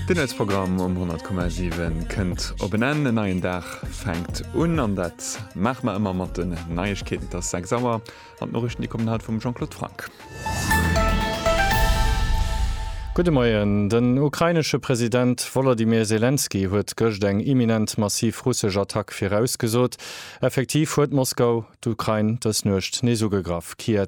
Den Nuetsprogramm um 100,7 kënnt op en Enn. En neien Dag fänkt un an dat maache mer ëmmer mat den Neiegkeeten. Et ass 6 Auer an d'Noriichten, déi kommen haut vum Jean-Claude Franck. Gudde Moien. Den ukrainesche President Wolodymyr Selenskyj huet gëscht eng imminent massiv russesch Attack virausgesot. Effektiv huet Moskau d'Ukrain dës Nuecht nees ugegraff. Kiew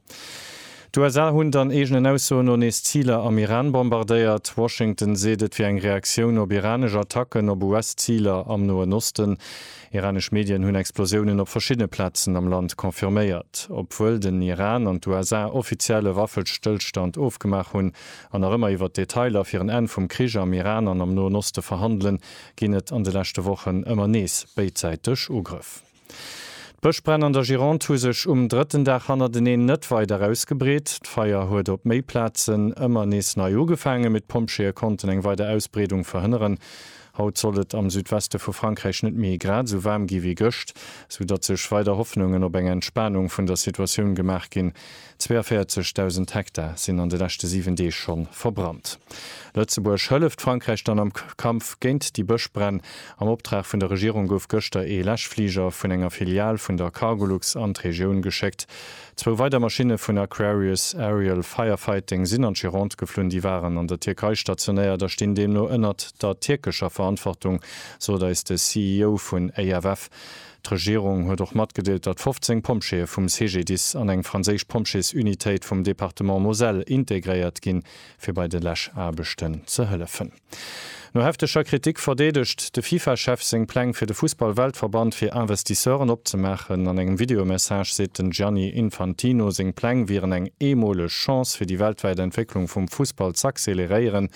D'USA hunn dann eegenen Aussoen no nees Ziler am Iran bombardéiert. Washington seet, et wier eng Reaktioun op iranesch Attacken op US-Ziler am Noen Osten. Iranesch Medien hunn Explosiounen op verschiddene Plazen am Land confirméiert. Obwuel den Iran an d'USA offiziell e Waffestëllstand ofgemaach hunn an nach ëmmer iwwer d'Detailer fir en Enn vum Krich am Iran an am Noen Oste verhandelen, ginn et an de leschte Wochen ëmmer nees béidsäiteg Ugrëff. D'Bëschbränn an der Gironde hu sech um drëtten Dag hannerteneen net weider ausgebreet. D'Feier huet op méi Plazen ëmmer nees nei ugefaangen, mee d'Pompjeeë konnten eng weider Ausbreedung verhënneren. Haut sollt et am Südweste vu Frankräich net méi grad esou waarm gi wéi gëscht, soudatt sech weider Hoffnungen op eng Entspanung vun der Situatioun gemaach ginn. 42.000 Hektar sinn an de leschte 7 Deeg scho verbrannt. Lëtzebuerg hëlleft Frankräich dann am Kampf géint déi Bëschbränn. Am Optrag vun der Regierung gouf gëschter ee Läschfliger vun enger Filial vun der Cargolux an d'Regioun geschéckt. Zwou weider Maschinne vun Aquarius Aerial Firefighting sinn an d'Gironde geflunn. Déi waren an der Tierkei stationéiert a stinn deemno ënnert der tierkescher Verantwortung, sot eis de CEO vun AFF. D'Regierung huet och matgedeelt, datt 15 Pompjeeë vum CGDIS an eng franséisch Pompjeesunitéit vum Departement Moselle integréiert ginn, fir bei de Läschaarbechten ze hëllefen. No hefteger Kritik verdeedegt de FIFA-Chef seng Pläng fir de Fussball-Weltverband fir Investisseuren opzemaachen. An engem Videomessage seet den Gianni Infantino, seng Pläng wieren eng eemoleg Chance fir déi weltwäit Entwécklung vum Fussball z'acceleréieren.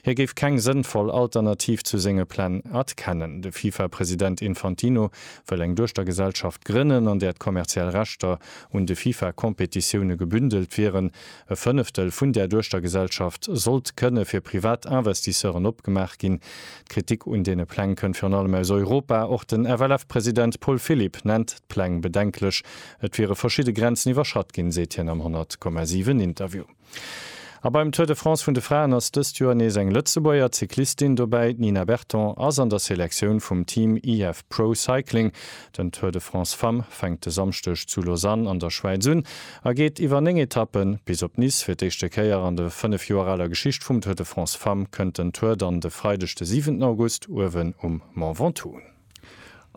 Hie géif keng sënnvoll Alternativ zu senge Pläng erkennen. De FIFA-President Infantino wëll eng Duechtergesellschaft grënnen, an där d'kommerziell Rechter un de FIFA-Competitioune gebündelt wieren. E Fënneftel vun där Duechtergesellschaft sollt kënne fir privat Investisseuren opgemaach ginn. D'Kritik un deene Pläng kënnt virun allem aus Europa. Och den FLF-President Paul Philipp nennt d'Pläng bedenklech. Et wiere verschidde Grenzen iwwerschratt ginn, seet hien am 100,7 Interview. A beim Tour de France vun de Fraen ass dëst Joer nees eng Lëtzebuerger Cyclistin dobäi. D'Nina Berton ass an der Selektioun vum Team IF Pro Cycling. Den Tour de France Femmes fänkt de Samschdeg zu Lausanne an der Schwäiz un a geet iwwer 9 Etappen bis op Nice. Fir d'éischte Kéier an de 5 Joer aler Geschicht vum Tour de France Femmes kënnt den Tour dann de Freideg de 7 August uewen um Mont Ventoux un.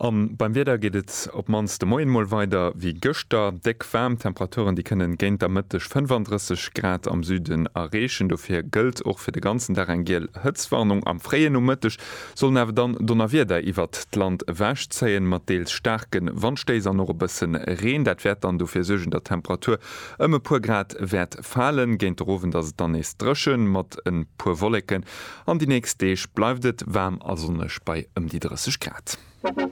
A beim Wieder geet et op d'mannst de Moien mol weider wéi gëschter, déck waarm. D'Temperaturen, déi kënnen géint der Mëtteg 35 Grad am Süden erreechen. Dofir gëllt och fir de ganzen Dag eng giel Hëtztwarnung. Am fréie Nomëtteg sollen awer dann Donnerwieder iwwert d'Land ewech zéien, mat deels staarke Wandstéiss an och e bësse Reen. Dat wäert dann dofir suergen, datt d'Temperatur ëm e puer Grad wäert falen. Géint de rowend ass et dann nees dréchen, mat e puer Wolleken An déi nächst Deeg bleift et waarm a sonneg bei ëm déi 30 Grad.